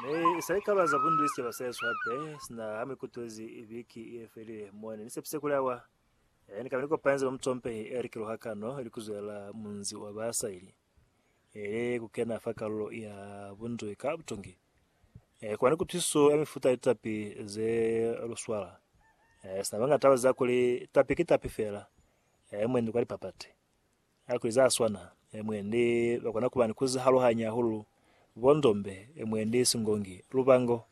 Ne sa li kaba za bundu isicaba sa yesu hape sina ha mikutwezi biki ye felile mone ni sepise kuli awa e ni kaba ni kopanze ba mutsompehi e likilo hakano li kuzwela munzi wa basa ili ele ku kena fa kalulo ya bunzwi ka butongi e kuba ni kutwisiso ya mifuta ya litapi ze luswala e sina bangata ba za kuli tapi ki tapi fela e mwendi kwa lipapati Ha kuli za swana, mwendi ba kona kuba ni ku zihaluhanya hahulu, bo ndombe, mwendi singongi, lubango,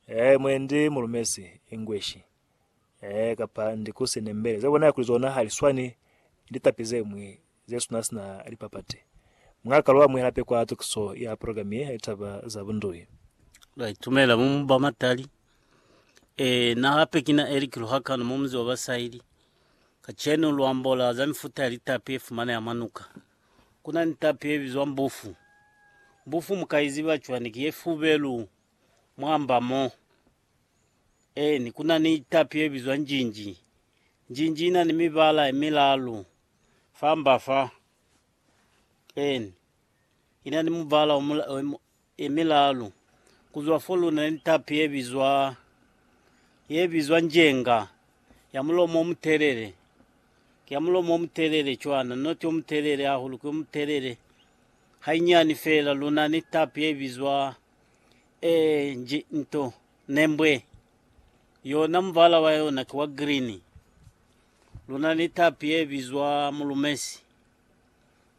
ee, mwendi mulumesi, Engueshi, ee, kapa ndi ku se nembele. Za bona kuli zona ha li swani ni litapi ze ñwi ze suna sina lipapati. Mwa ka lu amuhela hape kwa tukiso ya program ye ya litaba za bundui. Ba itumela mu mu ba matali. Ee, na hape kina Eric Luhakano, mu muzi wa ba Saili. Kacenu lu ambola za mifuta ya litapi ye fumaneha mwa nuka. Ku na ni tapi ye bizwa mbufu. Mbufu mu ka i ziba cwani? Ki ye fubelu mwa mba mo. Eeni, ku na ni tapi ye bizwa njinji. Njinji i na ni mibala ye milaalu fa mba fa. Eeni, Ina ni mubala e milalu kuzwa fo luna ni tapi yebizwa yebizwa njenga, ya mulomo omutelele, ki ya mulomo omutelele cwana, not omutelele hahulu, ki omutelele hainyani fela, luna ni tapi yebizwa e nji nto nembwe, yona mubala wa yona ki wa green, luna ni tapi yebizwa mulumesi.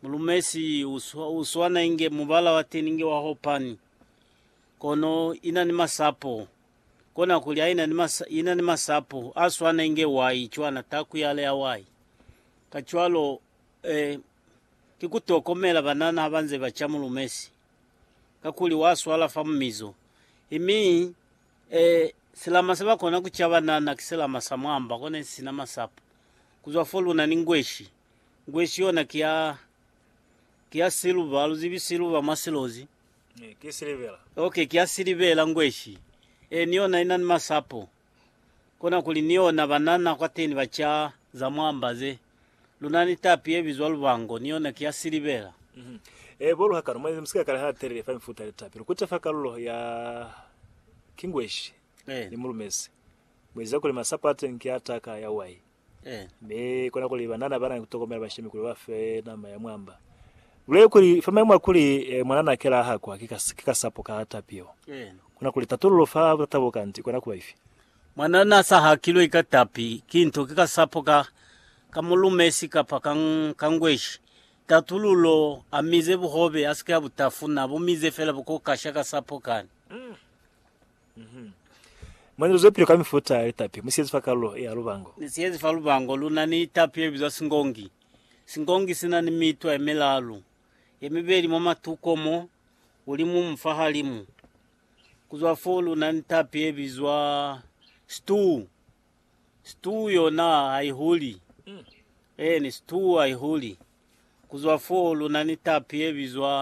Mulumesi u swana inge mubala wa teni inge wa hopani, kono ina ni masapo. Kona kuli ha ina ni masapo a swana inge wai, cwana taku yale ya wai. Kacwalo, eh, ki ku tokomela banana ha ba nze ba ca mulumesi, kakuli wa swala fa mumizo. I mi, eh, silama se ba kona ku ca banana ki silama sa mwamba, kona isina masapo. Kuzwa fo luna ni ngweshi. Ngweshi yona ki ya, ki ya siluba, haluzibi siluba mwa silozi. Eh, ki silivela. Okay, ki ya silivela ngweshi. Eh, ni yona inani masapo. Kona kuli ni yona banana kwateni ba ca za mwamba ze. Luna ni tapi ye bizwa lubango, ni yona ki ya silivela. Mhm. Eh, bo luhakano, mwa ize musika kale ha telele fa mifuta ya litapi. Lukute fa kalulo ya, ki ngweshi, Eh. ni mulumezi. Mweziza kuli masapo ateni ki a taka ya wai. Mi kona kuli banana bana ni kutokomela bashemi kuli bafe nama ya mwamba. Lule kuli fa maimo a kuli mwanana akela ahakwa ki kasapo ka tapi yeo, kona kuli tatululo fa butata bo kanti ikona kuba ifi? Mwanana sa hakilwe ka tapi ki nto ki kasapo ka ka mulumesi kapa ka ngweshi. Tatululo, Amize buhobe, asike abutafuna, abumize fela bukokasha kasapo kani. Mwa nilo zepile ka mifuta ya litapi musiyezi fa kalulo ya lubango. Musiyezi fa lubango luna ni litapi lelibizwa singongi. Singongi sina ni mitwa yemilaalu, yemibeli mwa matuko mo, ulimumu fa halimu. Kuzwa fo luna ni litapi yebizwa situu. Situu yona haihuli. Eeni, situu haihuli. Kuzwa fo luna ni litapi yebizwa.